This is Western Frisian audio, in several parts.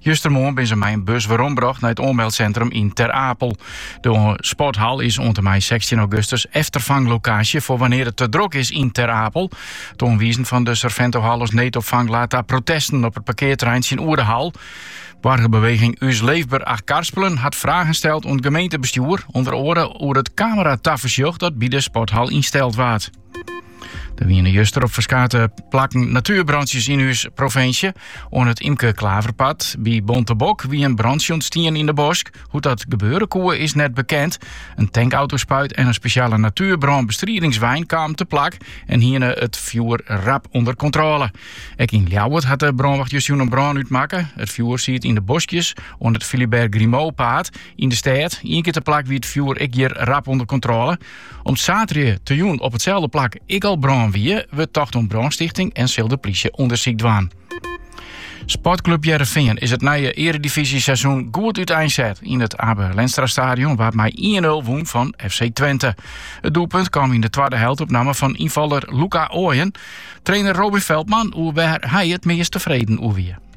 Justermoarn binne se mei in bus werombrocht nei it oanmeldsintrum yn Ter Apel. De sporthal is oant en mei sechstjin augustus efterfanglokaasje foar wannear't it te drok is yn Ter Apel. It oanwizen fan de Surventohal as needopfang late ta protesten op it parkearterrein tsjinoer de hal. Boargerbeweging Us Leefber Achtkarspelen hat fragen steld oan it gemeentebestjoer, ûnder oare oer it kameratafersjoch dat by de sporthal ynsteld waard. Der wiene juster op ferskate plakken natuerbrantsjes yn ús provinsje. Oan it Imke Klaverpaad by Bontebok wie in brantsje ûntstien yn de bosk. Hoe't dat gebeure koe is net bekend. In tankautospuit en in spesjale natuerbrânbestridingswein kamen te plak en hiene it fjoer rap ûnder kontrôle. Ek yn Ljouwert hat de brânwacht justerjûn in brân útmakke. It fjoer siet yn de boskjes oan it Philibert Grimaud-paad yn de stêd. Ien kear te plak wie it fjoer ek hjir rap ûnder kontrôle. Om't saterdei te jûn op itselde plak ek al brân wie, wurdt tocht om brânstichting en sil de plysje ûndersyk dwaan. Sportclub Hearrenfean is it nije earedivyzjeseizoen goed úteinset. Yn it Abe Lenstra-stadion waard mei 1-0 wûn fan FC Twente. It doelpunt kaam yn de twadde helte op namme fan ynfaller Luca Oyen. Trainer Robin Veldman oer wêr hy it meast tefreden oer wie.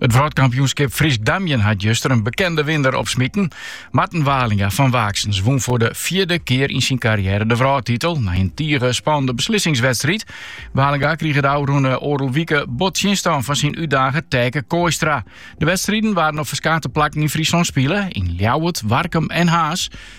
It wrâldkampioenskip Frysk Damjen hat juster in bekende winner opsmiten. Marten Walinga fan Waaksens wûn foar de fjirde kear yn syn karriêre de wrâldtitel nei in tige spannende beslissingswedstriid. Walinga krige de ôfrûne oardel wike bot tsjinstân fan syn útdager Taeke Kooistra. De wedstriden waarden op ferskate plakken yn Fryslân spile, yn Ljouwert, Warkum en Harns.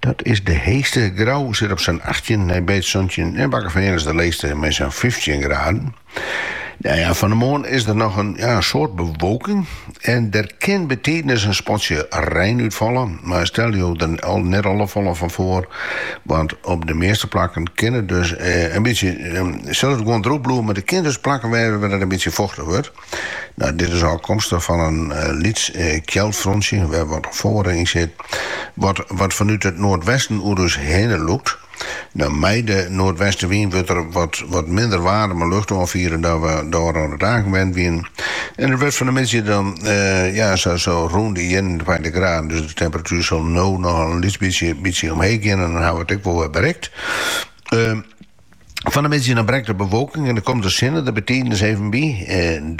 Dat is de heechste. Grou sit op sa'n achttjin, Nij Beets santjin en Bakkefean is de leechste mei sa'n fyftjin graden. Nou ja, fan de moarn is der noch in ja, soad bewolking en der kin betiidens in spatsje rein útfalle, mar stel jo der net al te folle fan foar, want op de measte plakken kin it dus eh, in bytsje, eh, sil it gewoan drûch bliuwe, mar der kin dus plakken wêze wêr't it in bytsje fochtich wurdt. Nou, dit is ôfkomstich fan in lyts kjeldfrontsje wêr't net folle yn sit, wat fanút it noardwesten oer ús hinne lûkt. Nou, mei de noardwestewyn wurdt der wat minder waarme lucht oanfierd dan we de ôfrûne dagen wend wiene. En it wurdt fan de middei dan ja, sa rûn de ienentweintich graden, dus de temperatuer sil no noch in lyts bytsje omheech gean en dan hawwe we it ek wol wer berikt. Fan de middei dan brekt de bewolking en dan komt de sinne der bytidens even by.